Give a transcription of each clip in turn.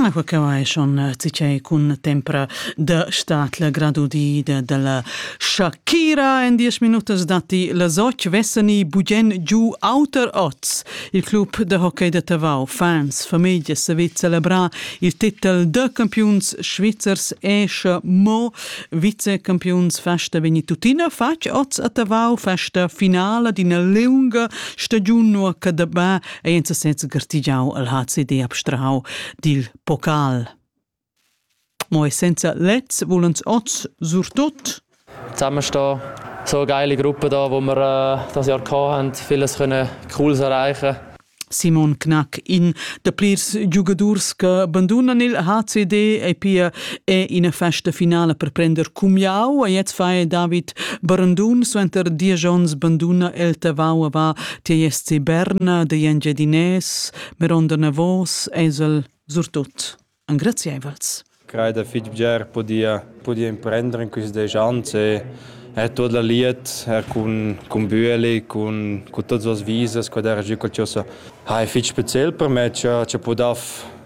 Aqua que vai schon tgei cun tempra da stat la gradudida dalla Shakira en 10 minutas datti las 8 vessani bugen giu auter oz. Il club da hockey da Tavau, fans, famiglia savit celebrar il titel da campiuns svizzers e sche mo vicecampiuns festa vegni tuttina fatg oz a Tavau festa finala d'ina lunga stagiun nua che dabà ei en sesez gartigiau al HCD abstrahau dil pocal. Mo essenza lez vulens oz surtut? Zusammen stehen so eine geile Gruppe da, wo wir äh, das Jahr hatten, vieles können Cooles erreichen Simon Knack, in de plirs giugadurs che bandunan il HCD e pia è ina festa finale per prender cumiau. E jetzt fai David Barandun suenter dies onns banduna el tavau va Ti est si Berna dei Engiadinès, meronda navos esel surtut. Engraziaivels. Crei da fitg bger podia, podia imprendere in quist desch ans e er tot la liet, er cun, cun Büeli, cun, cun tots las visas, quad era giù col ciò so. Ha è fitg speziel per me, cha, cha podaf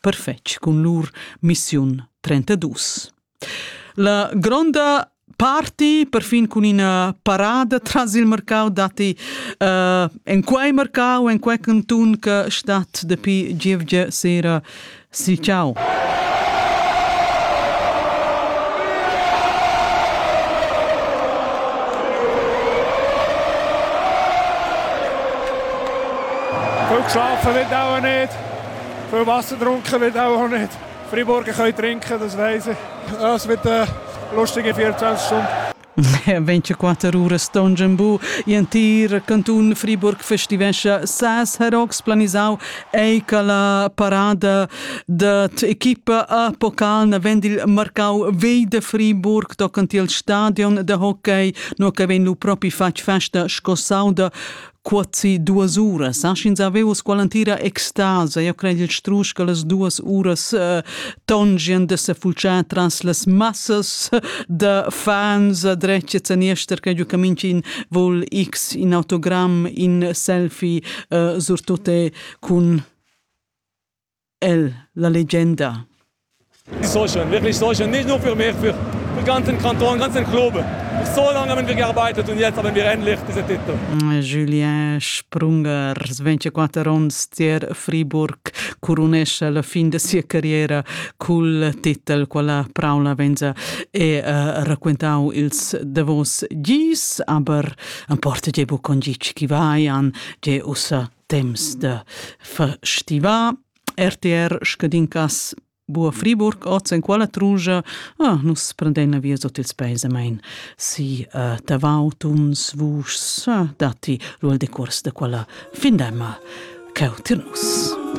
perfetg cun lur missiun 32. La gronda parti, perfin cun ina parada tras il mercau datti uh, en quei mercau, en quei cantun che stat dapi gievgia sera. Si ciao. Rückschauf verwendet auch nicht. Für Wasser trunken wird auch nicht. Freiburger können trinken, das weiss ich. Es wird eine lustige 24 Stunden. Le 24 uras Tonjambu e antir cantun Friburg festivescha ses herox planisau ei che la parada dat equipa a pocal na vend il marcau vei de Friburg tocant il stadion de hockey no che vegn lu propi fatg festa sco sauda Quasi duas uras, eh? sch'ins aveva quella entira extasa, io cred il strusch che las duas uras uh, tongien de se fulciar tras las massas de fans dreccets en ester che giu caminci vol X in autogram in selfie uh, surtute cun El, la legenda. Ich soll schon, wirklich, ich soll schon. Nicht nur für mich, für den ganzen Kanton, ganzen Club. So lange haben wir gearbeitet und jetzt haben wir endlich diesen Titel. Julien Sprunger, 24 ans tier Friburg, curunesce la fin de sia carriera cul titel quella Paula Venza e uh, raccontau ils davos gis, aber am porta ge bu con gi chi vai an, ge ussa temps da festivar. RTR scadin cas Bua Friburg, oz en quella trungia, ah, nus prendein via sot ils peis amein si uh, tavautums, vuschs, ah, datti ruel decors de quella findemma cheu tirnus.